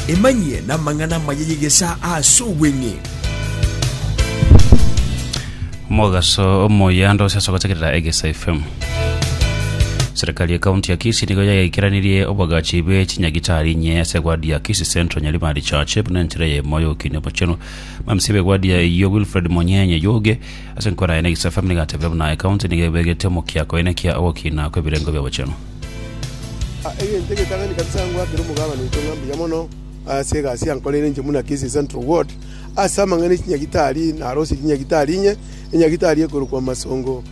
Emanyie namang'ana amaya y'egesaa ase obweng'e. Mogaso omoyando ase ase gotegerera Egesa FM. Serikali ya kaunti ya Kisii nigo yagekeranirie obwagachi bwe chinyagitari inye ase egwadi ya Kisii Central Nyaribari Church buna enchera ya emoyo y'okinyi omochenu. Mamisi b'egwadi ya eyio Wilfred Monyenye Yoge ase enkoro yaye na Egesa FM nigatebire buna ekaunti nigo ebegete omokiako ene kia ogokina kw'ebirengo bi'obochenu. Egento egetang'ani kabisa nigo ngwakere omogabane oito ng'a mbuya mono ase egasi yankoreire inche buna Kisii Central Ward. Ase amang'ana e chinyagitari narosie chinyagitari inye, enyagitari ekorokwa Masongo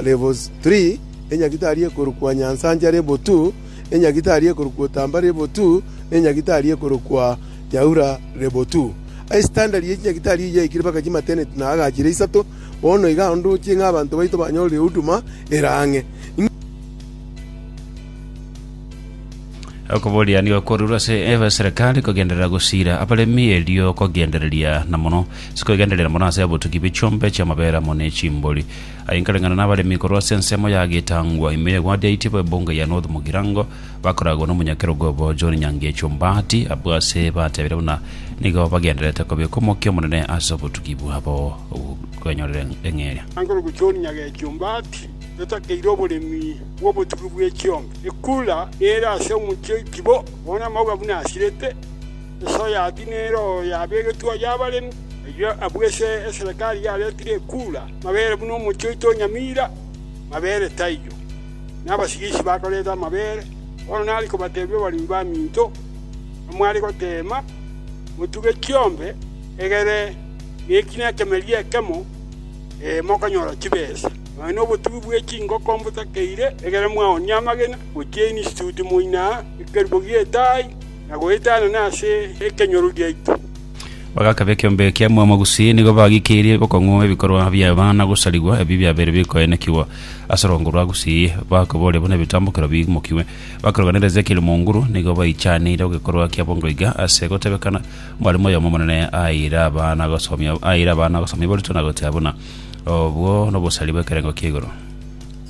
Level Three, enyagitari ekorokwa Nyansancha Level Two, enyagitari ekorokwa Otamba Level Two, na enyagitari ekorokwa Nyaura Level Two. Ase standard ya echinyagitari eyio yaikire mpaka chimateneti na agachire isato, bono iga ndoche ng'a abanto baito banyorire huduma ere ang'e. okoboria nigo kwarurwa ase eserikari kogenderera gosira abaremi erio kogendereria na mono sikogendereria mono ase obotugi bwe chiombe chiamabera amo ne chimbori aye nkareng'ana na abaremi korwa ase ensemo ya getangwa ime ya egwadiaiti abo ebunge ya north mogirango bakoragwa na omonyakerogo obo john nyangechi ombati abwo ase batebire buna nigo bagendererete kobeka omokia omonene ase obotugi bwabo bwanyorire eng'eria Angorokwa John Nyagechi Ombati, Totakeire oboremi bw'obotugi bwe chiombe. Ekura nere ase omochie oiti bo, bono amauga buna asirete. Esoya ati nero yabegetwe aya abaremi. Erio abwo ase eserekari yaretire ekura, mabere buna omochie oito o Nyamira, mabere taiyo. Nabasigisi bakorete amabere. Bono nare kobatebia abaremi baminto, namware goteema, motuge chiombe, egere neki nekemerie ekemo, ee, mokonyora chibesa. Nonya nobotugi bwe chingoko mbotakeire, egere mwaoonie amagena gochia instituti moina ekerubo gi'etaai, na goetanana ase ekenyoro giaito. Bagakaba ekeombe ekia Mwaomo Gusii, nigo bagikeirie bokong'u ebikorwa bi'abana gosarigwa, ebi biabeire bikoenekigwa ase orwango rwa Gusii, bakoboria buna ebitambokero biimokigwe. Bakeroganera Ezekieli Munguru, nigo baichaneire egekorwa kia bongoiga ase gotebekana, Mwalimu oyomo omonene aeire abana gosomia, aeire abana gosomia barutwa na gotea buna, Obwo nobosari bw'ekerengo kia igoro.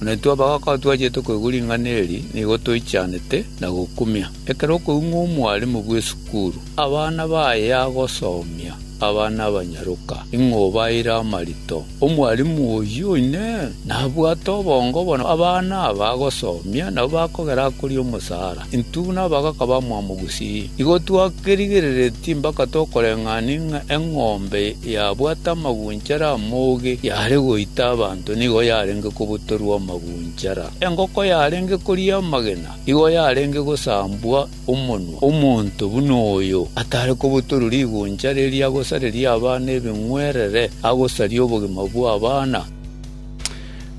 Na intwe abagaaka twachete koigwa ring'ana eri, nigo toichanete na gokumia. Ekero okoing'wa omwaremu bw'esukuru, abana baye agosomia abana abanyaroka, ing'o obaeire amarito? Omwaremu oyio oine nabwate obongo bono abana aba agosomia nabo bakogera akoria omosaara. Intwe buna abagaka bamwabo gusii, nigo twakerigereretie mpaka tokoreng'ania ng'a eng'ombe yabwate amagunchara amoge yare goita abanto nigo yarenge kobutorwa amagunchara, engoko yarenge koria amagena nigo yarenge gosambwa omonwa. Omonto buna oyo atare kobutorwa rigunchara eria agosareria abana ebing'werere, agosaria obogima bw'abana.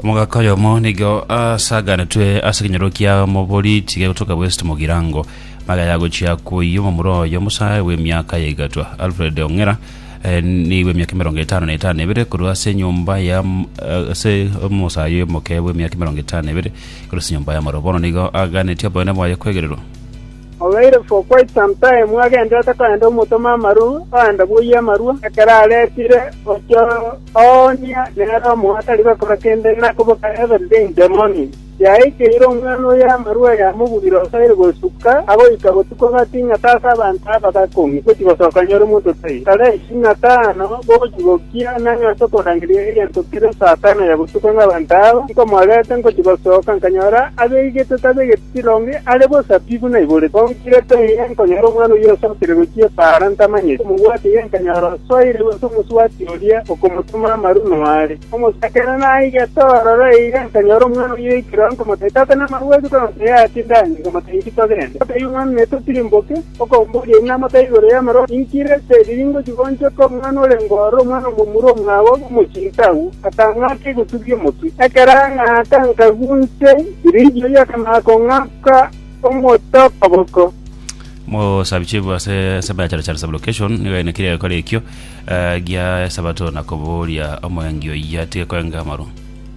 Omogaka oyomo nigo asaganetwe ase ekenyoro kia omoboriti gegotoka West Mogirango. Magega yagochia koiyia omomura oye omosae bw'emiaka ya egatwa Alfred Ong'era eh, ni bw'emiaka emerongo etano na etano ebere korwa ase enyomba ya m- eh, ase omosae oyo omoke bw'emiaka emerongo etano ebere korwa ase enyomba ya moro. Bono nigo aganetie oboene bwaye kwegererwa. Obeire for quite some time agenderete korenta omotoma amaru ogenda bwoyia amarua, ekero aretire gochia oonia nere omoyo atari gokora kende na koboka every day in the morning. Yaikeire omwana oye amarua yamogurire osoiri gosuka agoika botuko gati ing'ata ase abanto aba gakong'ia gochia gosoka nyore omonto tai tarensi ing'ata ano gochia gokia nang'e ase okorangeria egento kere saa tano ya botuko ng'a abanto aba nkomorerete ngochia gosoka nkanyora abeegete tabegete Ekironge are bw'esabibu naibore, twagochigete eye nkonyora omwana oyio asokire gochia epaara ntamanyeti, omobwati eye nkanyora osoire gose omoswati oria okomotoma amaru noare. Omosakeene naigete ororo eira nkanyora omwana oyio oikire ore nkomotebia, Tata namabwati kwanotebia ati, Ndanye, nkamotebia, Inki togende? Otebia omwana, Naye totirimboke. Okoomba oria aina amotebe igoro y'amaroro, Inki rete eri ringochi goonchoka omwana orenge ororo, omwana omomura omwabo obe omochinte agwo? Akang'aka egusubia omotwe. Ekero ang'aka, nkagunse. Elijah oyoka na kong'aka omote okoboko. Mosabichifu ase ensemo ya Charachara Sublocation nigo yainekire egekora ekio eh, gia Esabato na kobooria omoengi oyio atige koenga amarwa.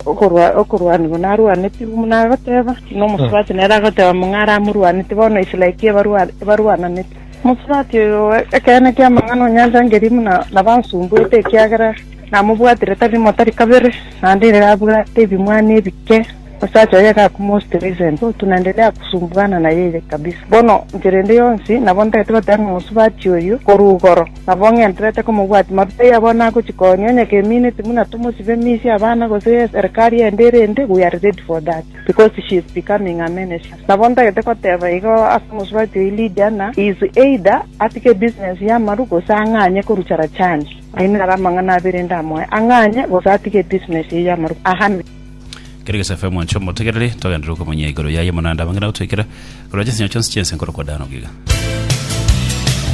Okorwa, okorwanigwa narwanetigwe, buna agoteba, buna omosubati nere agoteba ng'a ng'are amorwanete, bono Israel ki ebarwa, ebarwananete? Omosubati oyo ekeene ki'amang'ana onyantangerie buna nabansumbuete, ekiagera namobwatire tari rimo tari kabere, naende ere abwate ebimwani ebike. Omosacha oye gakuma Oste Vincent, oo tunaendelea kusumbuana na yeye kabisa. Bono enchera ende yonsi nabo ntagete goteba ng'a mosubati oyio korwa igoro, nabo ng'enterete komobwati marutai abo nagochia konya onye keminiti buna tomosibe misia abana gose y'eserikari ende erende we are ready for that because she is becoming a minister. Nabo ntagete goteba igo ase omosubati oyio Lydia ng'a he is either atige ebusiness y'amaru gose ang'anye korucha rachani. Ayio naro amang'ana abere ndamoe, ang'anye gose atige ebusiness eye y'amaru, ahame. Kera gese afe omwancho omotegereri, togenderere okomonyia igoro yaye, mono naende abange na gotwekera, korwa chinsinyo chionsi chi'ense nkoro kwa Dan ogiga.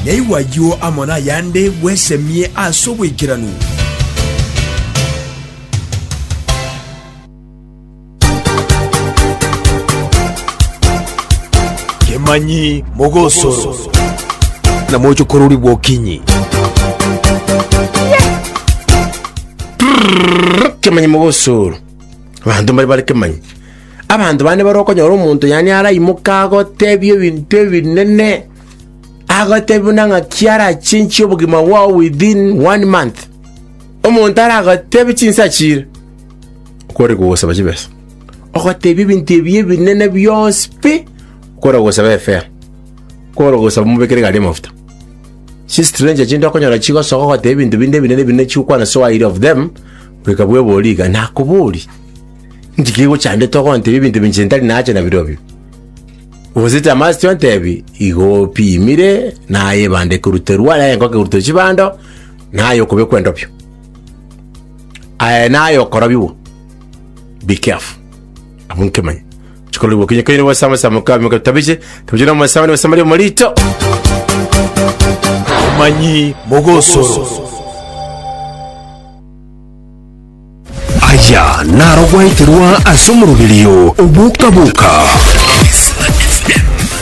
Naigwe ayio amo nayande bwesemie ase oboikeranu. Kemanyi mogosoro na mochokorori bw'okinyi. Kemanyi mogosoro, abanto mbare bare kemanyi. Abanto bande bare okonyora omonto yani araimoke agotebie ebinto ebinene, agotebie buna ng'aki arachenchie obogima bwao within one month. Omonto aragotebie chinsa chire okore kogosaba chibesa, ogotebie ebinto ebi ebinene bionsi pi okore kogosaba efea, okore kogosaba omobekere egari y'amafuta. Chistranger chinde okonyora chigosoka ogoteba ebinto binde ebinene ebinene chigokwana so wire of them, goika bwebori iga. Nakobori, inki kegochandete ogontebia ebinto binche ntari nacha nabirobio? Gose tamasti ontebi igo opimire naye ebanda ekoruterwa naye engoke ekorutwa chibando naye okobekwa endobio aye naye okorobigwa be careful abwo nkemanye Chikoro gokinya kaire gose amasabo mokabi mokatabije tabije na amasabo ne basamaria omorito. Omanyi mogosoro. Aya naro gwaeterwa ase omoroberio oboka-boka.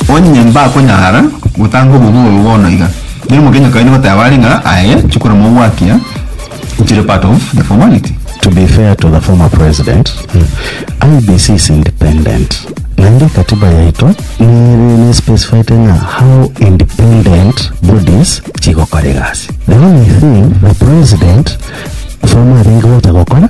Onye mbakonyara gotanga obobe oyo bono iga, nere omokenye kaire goteba are ng'a, Aye, chikora mogwakia, Ntire part of the formality. To be fair to the former president, IEBC is independent. Naende ekatiba yaito nere ne specified ng'a how independent bodies chigokora egasi. The only thing the president former arenge gocha gokora